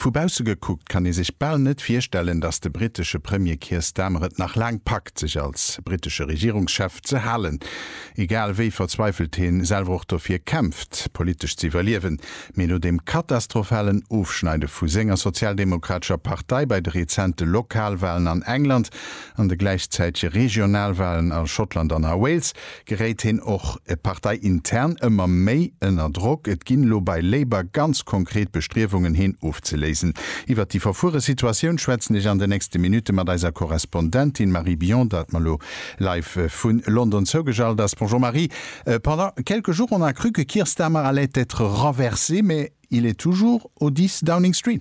Vu bausse gekuckt kann ee sech bal net virstellen, datt de brittesche Premier Keir Starmer et nach laang packt, sech als brittesche Regierungschef ze halen. Egal wéi verzweifelt hie selwer och dofir kämpft, politesch ze iwwerliewen. Mee no dem katastrophalen Ofschneide vu senger sozialdemokratescher Partei bei de rezente Lokalwalen an England an de gläichzäitege Regionalwalen a Schottland an a Wales, geréit heen och parteiintern ëmmer méi ënner Drock. Et ginn elo bei Labour ganz konkret Bestriewungen heen ofzeléisen. Iwwert déi verfuere Situatioun schwätzen ech an de nächste Minutte mat eiser Korrespondentin Marie Bion, dat mer elo live vu London zougeschalt ass. Bonjour Marie, pendant quelques jours on a cru que Keir Starmer allait être renversé, mais il est toujours au 10 Downing Street.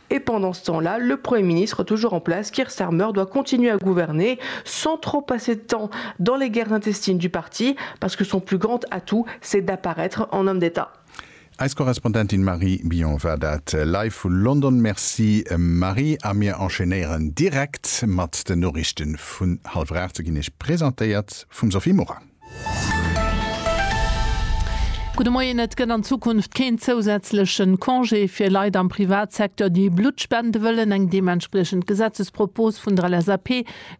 Et pendant ce temps là, le Premier ministre toujours en place, Keir Starmer, doit continuer à gouverner sans trop passer de temps dans les guerres intestines du parti parce que son plus grand atout c'est d'apparaître en homme d'Etat. Eis Korrespondentin Marie Billon war dat live vu London. Merci Marie. A mir enchaînéieren direkt mat den Noriichten vun hallwer 8. Se ginn Iech presentéiert vum Sophie Morang. Gudde Moien, Et gëtt an Zukunft keen zousätzleche Congé fir Leit am Privatsecteur, déi Blutt spende wëllen. Eng deementspriechend Gesetzespropos vun der LSAP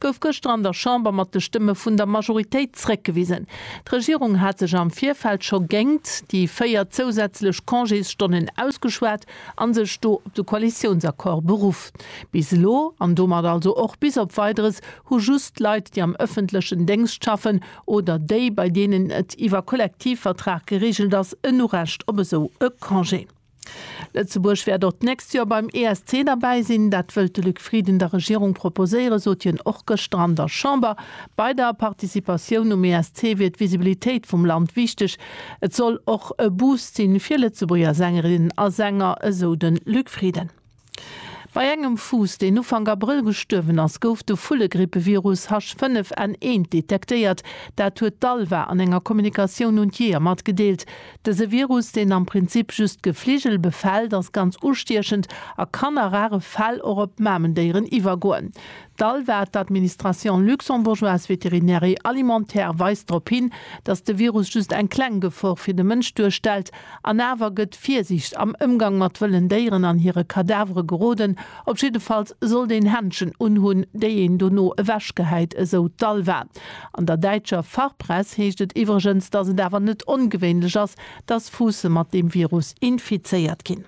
gouf gëschter an der Chamber mat de Stëmme vun der Majoritéit zréckgewisen. D'Regierung hat sech am Virfeld scho géingt déi véier zousätzlech Congésstonnen ausgeschwat a sech do op de Koalitiounsaccord beruff. Bis elo, an domat also och bis op Weideres, hu just Leit, déi am ëffentlechen Déngscht schaffen oder déi, bei deenen et iwwer Kollektivvertrag gereegelt ass, en Urecht op esou e Congé. Lëtzebuerg wäert och d'nächst Joer beim ESC derbäi sinn. Dat wëllt de Luc Frieden der Regierung proposéieren, sot hien och gëschter an der Chamber. Bei der Participatioun um ESC wier d'Visibilitéit vum Land wichteg. Et soll och e Boost sinn, fir Lëtzebuerger Sängerinnen a Sänger, esou de Luc Frieden. Bei engem Fuuss, deen Ufank Abrëll gestuerwen ass, gouf de Vullegrippevirus H5N1 detektéiert. Dat huet d'ALVA an enger Kommunikatioun un d'Jeeër matgedeelt. Dëse Virus, deen am Prinzip just Gefligel befält, ass ganz ustiechend a kann a rare Fäll och op Mamendéieren iwwergoen. D'Alva, d'Administration luxembourgeoise vétérinaire et alimentaire, weist drop hin, datt de Virus just eng kleng Gefor fir de Mënsch duerstellt, an awer gëtt Virsiicht am Ëmgang mat wëllen Déieren an hire Kadavere geroden. Op jiddefalls sollt een Händschen unhunn, déi een dono ewechgehäit, esou d'Alva. An der däitscher Fachpress heescht et iwwregens, datt et awer net ongewéinlech ass, datt Fuusse mat deem Virus infizéiert ginn.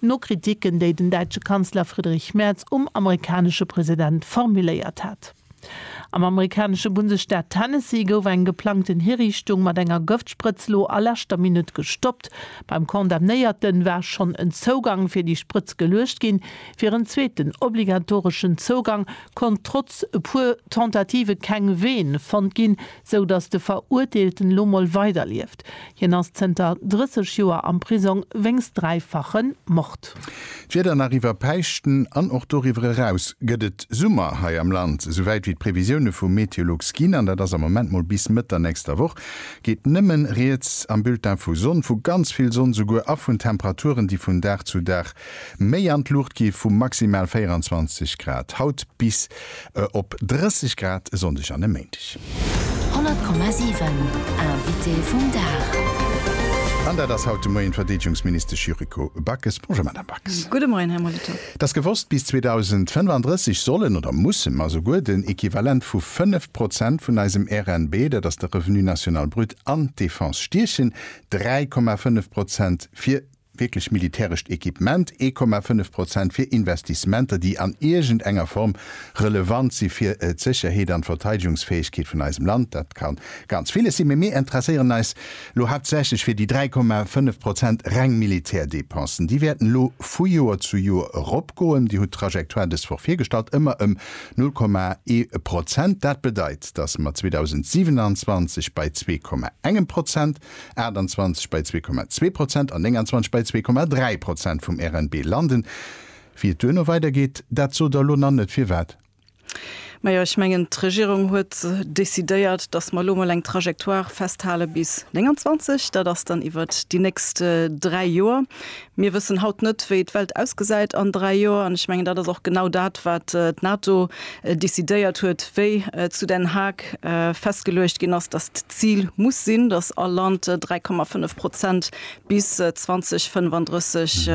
No Kritiken, déi den däitsche Kanzler Friedrich Merz um amerikanesche President formuléiert hat. Am amerikanesche Bundesstaat Tennessee gouf eng geplangten Hiriichtung mat enger Gëftsprëtz lo a leschter Minutt gestoppt. Beim Condamnéierte war schonn en Zougang fir déi Sprëtz geluecht ginn. Fir en zweeten obligatoreschen Zougang konnt trotz e puer Tentative keng Vene fonnt ginn, sou datt de Verurteelten lo mol weiderlieft. Hien ass zënter 30 Joer am Prisong wéinst dräifache Mord. D'Wieder nach iwwer Päischten an och doriwwer eraus gëtt et Summer hei am Land. Esou wäit wéi d'Previsioune vu Meteolux ginn, an dat ass am Moment mol bis Mëtt der nächster Woch, geet nëmme rieds am Bulletin vu Sonn, vu ganz vill Sonn esouguer, a vun Temperaturen, déi vun Dag zu Dag méi an d'Luucht gi, vu maximal 24 Grad haut bis Op 30 Grad e Sonndeg an e Méindeg. 100,7 Invité vum Dag. An dat ass haut de Moien d'Verdeedegungsministesch Yuriko Backes. Bonjour Madame Backes. Gudde Moien Här Molitor. T'ass gewosst, bis 2035 sollen oder musse mer souguer den Equivalent vu 5 Prozent vun eisem RNB, dat ass de Revenu national brut, an d'Defense stiechen, 3,5 Prozent fir wierklech militärescht Equipement, 1,5 Prozent fir Investissementer, déi an iergend enger Form relevant si fir d'Sécherheet an d'Verteidigungsfäegkeet vun eisem Land, dat ka ganz villes sinn, mee mir interesséieren eis elo haaptsächlech fir déi 3,5 Prozent reng Militärdepensen. Déi wäerten elo vu Joer zu Joer eropgoen. Dir hutt d'Trajectoire dës Woch virgestallt, ëmmer ëm 0,1 Prozent. Dat bedeit, datt mer 2027 bei 2,1 Prozent 28 bei 2,2 Prozent an 29 bei 2,3 Prozent vum RNB landen. Wéi et duerno weidergeet, dat sot Der lo nach net. Firwat? Majo, ech mengen, d'Regierung huet decidéiert, dass mer elo mol eng Trajectoire festhale bis 29. Dat ass dann iwwert déi nächst dräi Joer. Mir wëssen haut net, wéi d'Welt ausgesäit an dräi Joer. An ech mengen, dat ass och genau dat, wat d'NATO decidéiert huet, wéi zu Den Haag festgeluecht ginn ass, datt d'Zil muss sinn, datt all Land 3,5 Prozent bis 2035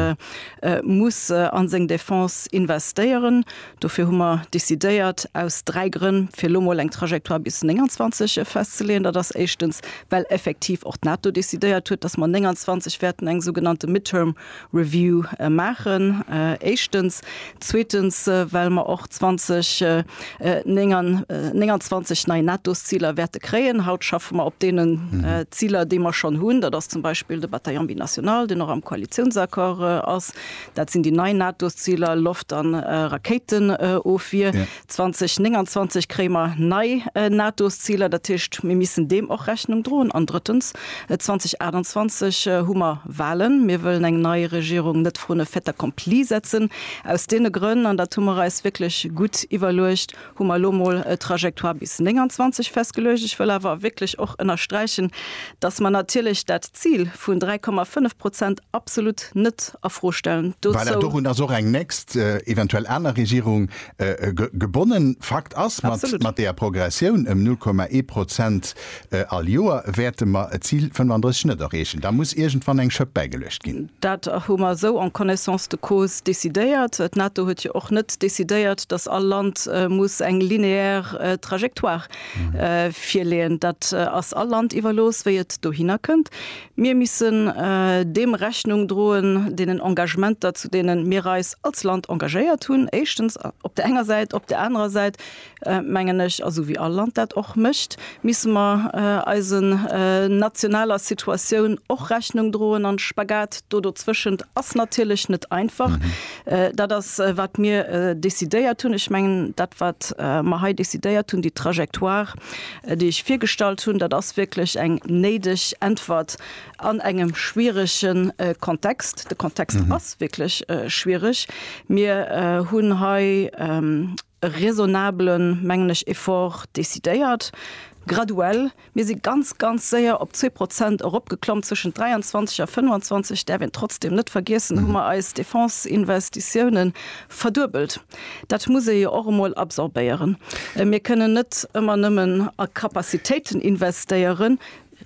muss a seng Defense investéieren. Dofir hu mer decidéiert, aus dräi Grënn, fir elo mol eng Trajectoire bis 29 festzeleeën. Dat ass éischtens, well effektiv och d'NATO decidéiert huet, dass mer 29 wäerten eng sougenannte Midterm Review maachen, éischtens. Zweetens, well mer och 2029 nei NATO-Ziler wäerte kréien. Haut schaffe mer op deenen Ziler, déi mer schonn hunn. Dat ass zum Beispill de Bataillon binational, deen och am Koalitiounsaccord ass. Dat sinn déi nei NATO-Ziler, Loft an Rakéitenofwier. 2029 kréie mer nei NATO-Ziler, dat heescht mir missen deem och Rechnung droen. An drëttens, 2028 hu mer Walen. Mir wëllen eng nei Regierung net vrun e fait accompli setzen. Aus deene Grënn, an dat hu mer eis wierklech gutt iwwerluecht, Hu mer elo emol e Trajectoire bis 29 festgeluecht. Ech wëll awer wierklech och ënnersträichen, dass mer natierlech dat Zil vun 3,5 Prozent absolut net a Fro stellen. Voilà, Dozou. dorun ass och eng nächst, eventuell aner Regierung gebonnen. Fakt ass, mat, Absolut. mat deeër Progressioun ëm 0,1 Prozent, All Joer wäerte mer d'Zil 35 net erreechen. Da muss iergendwann eng Schëpp bäigeluecht ginn. Dat hu mer esou en connaissance de cause decidéiert. D'NATO huet jo och net decidéiert, dass all Land muss eng linéaire Trajectoire virleeën. Dat ass all Land iwwerlooss, wéi et dohinner kënnt. Mir missen deem Rechnung droen, deenen Engagementer, zu deene mir eis als Land engagéiert hunn, éischtens op där enger Säit, op där anerer Säit mengen ech, esou wéi all Land dat och mécht, misste mer eise nationaler Situatioun och Rechnung droen an de Spagat do dozwëschent ass natierlech net einfach. Dat ass, wat mir décidéiert hunn. Ech mengen, dat, wat mer hei décidéiert hunn, déi Trajectoire, déi ech virgestallt hunn, dat ass wierklech eng néideg Äntwert an engem schwierege Kontext. De Kontext ass wierklech schwierig. Mir hunn hei, e raisonnabelen, mengen ech, Effort decidéiert, graduell. Mir si ganz, ganz séier op zwee Prozent eropgeklomm. Zwëschent 23 a 25, däerf een trotzdem net vergiessen, hu mer eis Defense-Investitiounen verduebelt. Dat muss ee jo och emol absorbéieren. Mir kënnen net ëmmer nëmmen a Capacitéiten investéieren,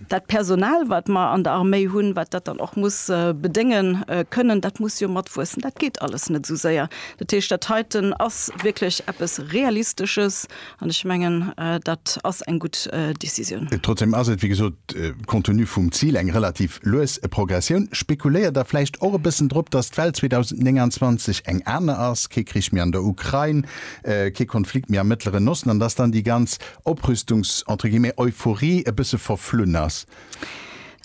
Dat Personal, wat mer an der Arméi hunn, wat dat dann och muss bedénge kënnen, dat muss jo matwuessen. Dat geet alles net esou séier. Dat heescht, dat heiten ass wierklech eppes Realistesches, an ech mengen, dat ass eng gutt Décisioun. Trotzdeem ass et, wéi gesot, compte tenu vum Zil, eng relativ lues Progressioun. Spekuléiert Der vläicht och e bëssen drop, dass d'Welt 2029 eng aner ass, kee Krich méi an der Ukrain, kee Konflikt méi am Mëttleren Osten, an dass dann déi ganz Oprüstungs entre guillemets Euphorie e bësse verflunn ass?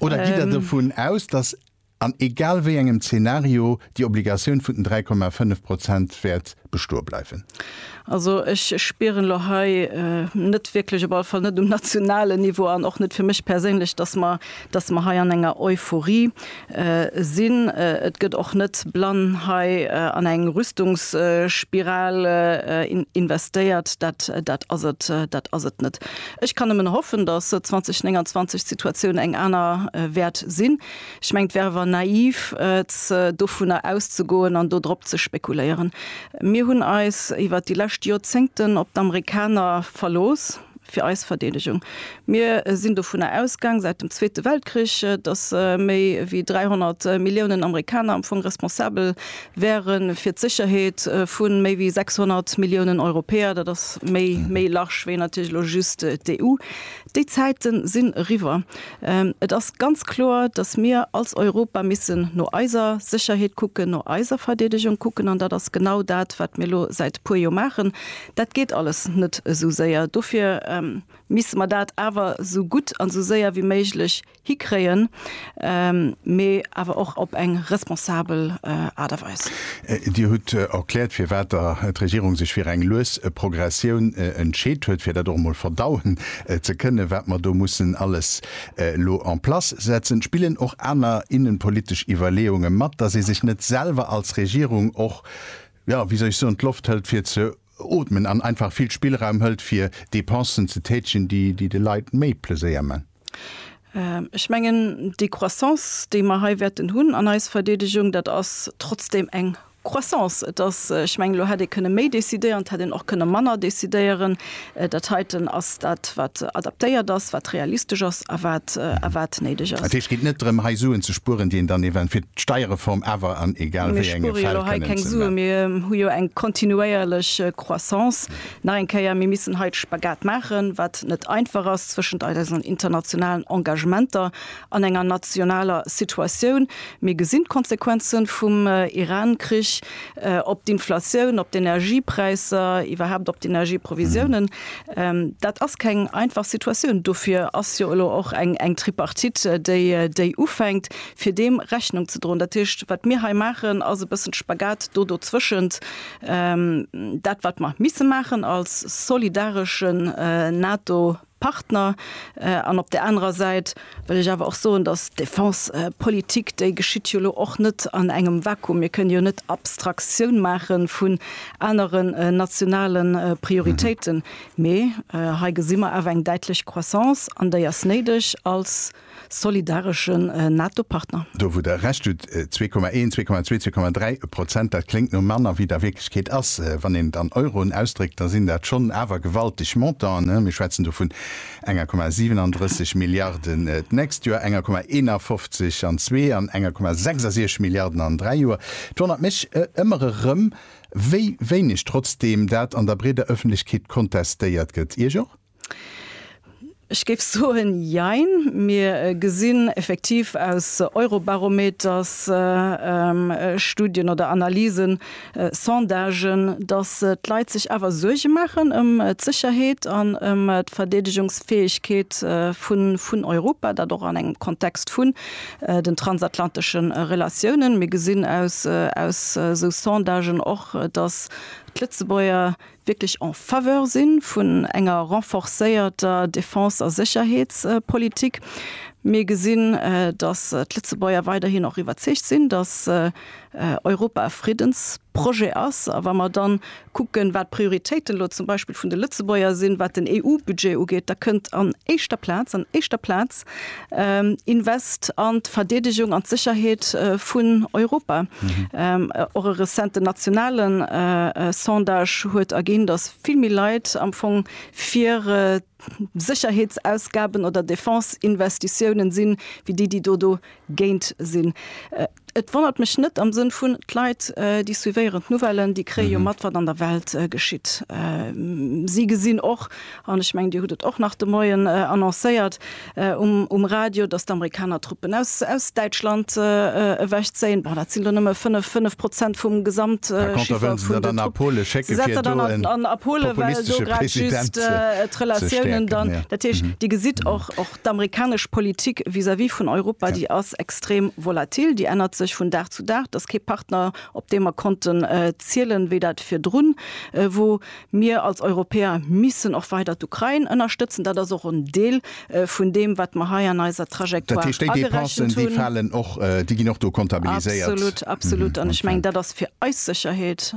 Oder gitt Der dovun aus, datt an egal wéi engem Zeenario déi Obligatioun vun den 3,5 Prozent wäert bestoe bleiwen? Also ech spieren elo hei net wierklech, op alle Fall net um nationalen Niveau an och net fir mech perséinlech, datt mer dass mer hei an enger Euphorie sinn. Et gëtt och net blann hei an eng Rüstungsspiral investéiert, dat ass et net. Ech kann nëmmen hoffen, dass 2029 d'Situatioun eng aner wäert sinn. Ech mengen, et wär awer naiv, dovunner auszegoen an do drop ze spekuléieren. Mir hunn eis iwwert déi lescht Joerzéngten op d'Amerikaner verlooss. fir eis Verdeedegung. Mir sinn dovunner ausgaang, säit dem Zweete Weltkrich, datt méi wéi 300 Milliounen Amerikaner am Fong responsabel wäere fir d'Sécherheet vu méi wéi 600 Milliounen Europäer. Dat ass méi, méi large wéi natierlech elo just d'EU. Déi Zäite sinn eriwwer. Et ass ganz kloer, datt mir als Europa missen no eiser Sécherheet kucken, no eiser Verdeedegung kucken. An dat ass genau dat, wat mir elo säit e puer Joer maachen. Dat geet alles net esou séier. Dofir misste mer dat awer esou gutt an esou séier wéi méiglech hikréien, mee awer och op eng responsabel Aart a Weis. Dir hutt erkläert, firwat d'Regierung sech fir eng lues Progressioun entscheet huet, fir dat och emol verdauen ze kënnen, wat mer do mussen alles elo en place setzen. Spillen och aner innenpolitesch Iwwerleeunge mat, dass ee sech net selwer als Regierung och, jo, wéi soll ech soen, d'Loft hëlt fir ze ootmen an einfach vill Spillraum hëlt fir Dépensen ze tätegen, déi de Leit méi Pleséier man. Ech mengen, déi Croissance, déi mer hei wäerten hunn an eis Verdeedegung, dat ass trotzdem eng Croissance. Et ass, ech mengen, elo hätt ee kënne méi decidéieren, et hätt een och kënne manner decidéieren. Dat heiten ass dat, wat adaptéiert ass, wat realistesch ass a wat néideg ass. Dat heescht, et geet net drëm, hei Suen ze spueren, déi een dann eventuell fir d'Steierreform awer an egal wéi engem Fäll kënnen ze. Mir spuere jo hei keng Suen. Mir hu jo eng kontinuéierlech Croissance. Nach eng Kéier, Mir missen hei de Spagat maachen, wat net einfach ass, zwëschent eisen internationalen Engagementer an enger nationaler Situatioun. Mir gesinn d'Konsequenze vum Iran-Krich. op d'Inflatioun, op d'Energiepräisser, iwwerhaupt op d'Energieprovisiounen. Dat ass keng einfach Situatioun. Dofir ass jo elo och eng Tripartite, déi ufänkt, fir deem Rechnung ze droen. Dat heescht, wat mir hei maachen, ass e bëssen de Spagat do dozwëschent, dat wat mer misse maachen als solidaresche NATO-Partner, Partner. An op där anerer Säit wëll ech awer och soen, dass d'Defensepolitik, déi geschitt jo elo och net an engem Vakuum. Mir kënne jo net Abstraktioun maache vun aneren nationale Prioritéiten. Mee hei gesi mer awer eng däitlech Croissance, an déi ass néideg als. solidareschen NATO-Partner. Do wou Der Recht hutt, zwee Komma een, zwee Komma zwee, zwee Komma dräi Prozent, dat kléngt no manner wéi et a Wierklechkeet ass. Wann een et an Euroen ausdréckt, da sinn dat schonn awer gewalteg Montanten. Mir schwätzen do vun enger Komma 37 Milliarden d'nächst Joer, enger Komma 51 an zwee an enger Komma 66 Milliarden an dräi Joer. Et wonnert mech ëmmer erëm, wéi wéineg trotzdeem dat an der breeder Ëffentlechkeet kontestéiert gëtt. Iech och? Ech géif soen jein. Mir gesinn effektiv aus Eurobarometers-Studien oder analysen, Sondagen, datt d'Leit sech awer Suerge maachen ëm d'Sécherheet an ëm d'Verdeedegungsfäegkeet vun Europa, dat och an engem Kontext vun den transatlantesche Relatiounen. Mir gesinn aus esou Sondagen och, datt d'Lëtzebuerger wierklech en faveur si vun enger renforcéierter Defense a Sécherheetspolitik. Mir gesinn, datt d'Lëtzebuerger weiderhin och iwwerzeegt sinn, datt Europa e Friddensprojet ass. A wa mer da kucken, wat d'Prioritéiten elo zum Beispill vun de Lëtzebuerger sinn, wat den EU-Budget ugeet, da kënnt an éischter Plaz, an éischter Plaz! Invest an d'Verdeedegung an d'Sécherheet vun Europa. Och e rezenten nationale Sondage huet erginn, datt vill méi Leit am Fong fir Sécherheetsausgaben oder Defense-Investitiounen sinn, wéi déi, déi do dogéint sinn. Et wonnert mech net am Sënn vun, d'Leit, déi suivéieren d'Nouvellen, déi kréie jo mat, wat an der Welt geschitt. Si gesinn och, an ech mengen Dir hutt et och nach de Moien annoncéiert um Radio, datt d'Amerikaner Truppen aus Däitschland ewechzéien. Bon, dat sinn do nëmme fënnef, fënnef Prozent vum Gesamtchiffre vun den Truppen. Si setzen dann a Polen, well do grad just d'Relatiounen dann, dat heescht, Dir gesitt och, D'amerikanesch Politik vis-à-vis vun Europa, déi ass extrem volatil, déi ännert sech vun Dag zu Dag. Et ass kee Partner, op dee mer konnten zielen, wéi dat virdrun wor. Mir als Europäer missen och weider d'Ukrain ënnerstëtzen. Dat ass och en Deel vun deem, wat mer hei an eiser Trajectoire agerechent hunn. Dat heescht, déi Dépensen, déi falen och, déi ginn och do kontabiliséiert. Absolut, absolut. An ech mengen, dat ass fir eis Sécherheet,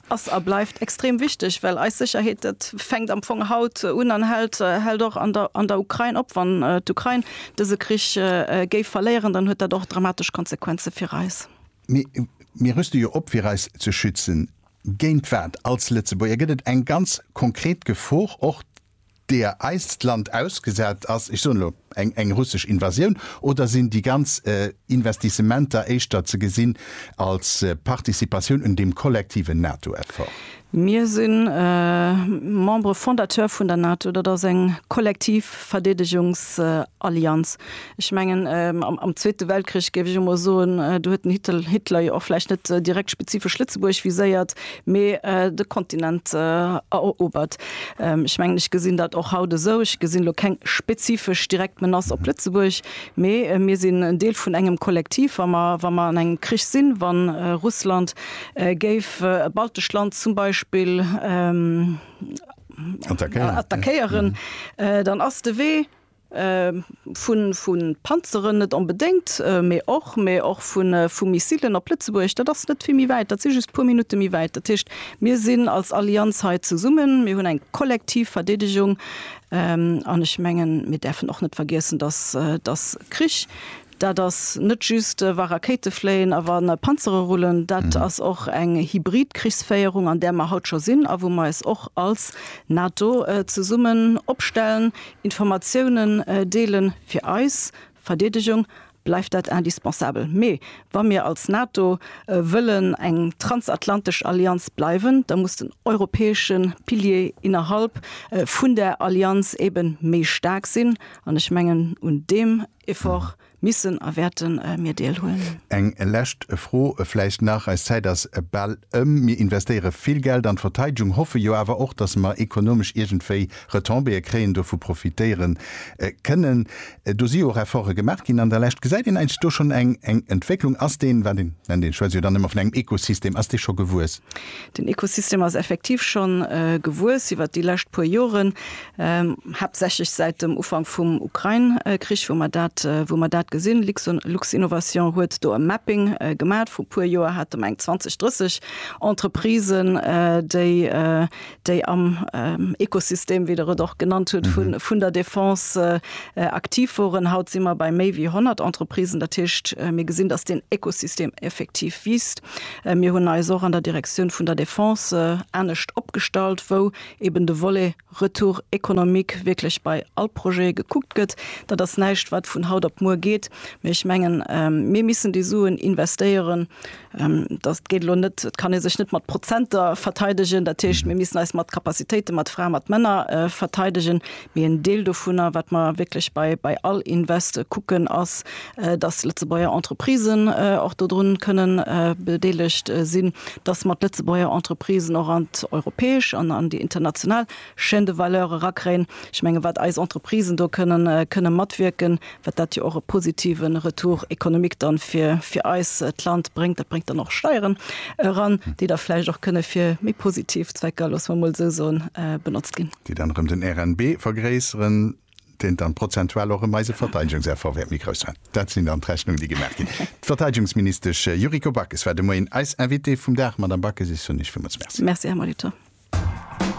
ass a bleift extrem wichteg, well eis Sécherheet, dat. fänkt am Fong haut un an hält, hält och an der, an der Ukrain op. Wann d'Ukrain dëse Krich géif verléieren, dann huet dat och dramatesch Konsequenze fir eis. Mee mir rüste jo op, fir eis ze schützen. Géint wat als Lëtzebuerger? Gëtt et eng ganz konkret Gefor, och deer eist Land ausgesat ass, ech soen elo eng, eng russesch Invasioun? Oder sinn déi ganz Investissementer éischter ze gesinn als Participatioun un deem kollektiven NATO-Effort? Mir si Membere fondateur vun der NATO. Dat ass eng kollektiv Verdeedegungsallianz. Ech mengen, am Zweete Weltkrich, géif ech emol soen, do huet den Hitler jo och vläicht net direkt spezifesch Lëtzebuerg viséiert, mee de Kontinent erobert. Ech mengen, ech gesinn dat och haut esou. Ech gesinn elo keng spezifesch direkt Menace op Lëtzebuerg, mee mir sinn en Deel vun engem Kollektiv. Wa mer an engem Krich sinn, wa Russland géif e baltescht Land zum Beispill attackéieren, dann ass de Wee vu Panzeren net onbedéngt, mee och, mee och vu Missilen op Lëtzebuerg, dat ass net vill méi wäit, dat si just puer Minutte méi wäit. Dat heescht, mir sinn als Allianz hei zesummen, mir hunn eng kollektiv Verdeedegung an ech mengen, mir däerfen och net vergiessen, dass Krich Dat ass net just, wa Rakéite fléien a wa Panzere rullen. Dat ass och eng hybrid Krichsféierung, an där mer haut scho sinn a wou mer eis och als NATO zesummen opstellen, Informatiounen deelen. Fir eis Verdeedegung bleift dat indispensabel. Mee wa mir als NATO wëllen eng transatlantesch Allianz bleiwen, da muss den europäesche Pilier innerhalb vun där Allianz eebe méi staark sinn. An ech mengen, un deem Effort missen a wäerte mir Deel huelen. Eng lescht Fro vläicht nach, eis Zäit ass bal ëm. Mir investéiere vill Geld an d'Verteidegung, hoffe jo awer och, datt mer ekonomesch iergendwéi Retombéeë kréien, dovu profitéiere kënnen. Do si jo och Efforte gemaach ginn an der Lescht. Gesäit een eigentlech do schonn eng Entwécklung? Ass deen, well een nennt dee schwätzt jo dann ëmmer vun engem Ekosystem, ass dee scho gewuess? Den Ekosystem ass effektiv schonn gewuess iwwert déi lescht puer Joren. haaptsächlech säit dem Ufank vum Ukrain-Krich, wou mer dat, wou mer dat gesinn. Luxinnovation huet do e Mapping gemaat. Vru puer Joer hate mer eng 20, 30 Entreprisen, déi, déi am Ökosystem, wéi Der et och genannt hutt, vun, vun der Defense aktiv woren. Haut si mer bei méi wéi 100 Entreprisen. Dat heescht, mir gesinn, dass deen Ökosystem effektiv wiisst. Mir hunn eis och an der Direktioun vun der Defense anescht opgestallt, wou eben de Volet Retour économique wierklech bei all Projet gekuckt gëtt. Dat ass näischt, wat vun haut op muer geet, mee ech mengen, mir missen déi Suen investéieren. Dat geet elo net, et kann ee sech net mat Prozenter verteidegen. Dat heescht, mir missen eis mat Capacitéiten, mat Fraen, mat Männer verteidegen. Mee en Deel dovunner, wat mer wierklech bei, bei all Invest kucken, ass, dass Lëtzebuerger Entreprisen och dodrun kënnen bedeelegt sinn, dass mer d'Lëtzebuerger Entreprisen och an d'europäesch an an déi international Chaîne de valeur erakréien. Ech menge wat eis Entreprisen do kënnen, kënnen matwierken, wat dat jo och e positive Retour économique dann fir, fir eis, d'Land bréngt. Dat bréngt dann och Steieren eran, déi da vläicht och kënnen fir méi positiv Zwecker, loosse mer emol esou soen, benotzt ginn. déi dann erëm den RNB vergréisseren, deen dann prozentual och erëm eise Verteidigungseffort wäert méi grouss man. Dat sinn dann d'Rechnungen, déi gemaach ginn. D'Verteidigungsministesch Yuriko Backes war de Moien eis Invitée vum Dag. Madame Backes, ech soen Iech villmools Merci. Merci, Här Molitor.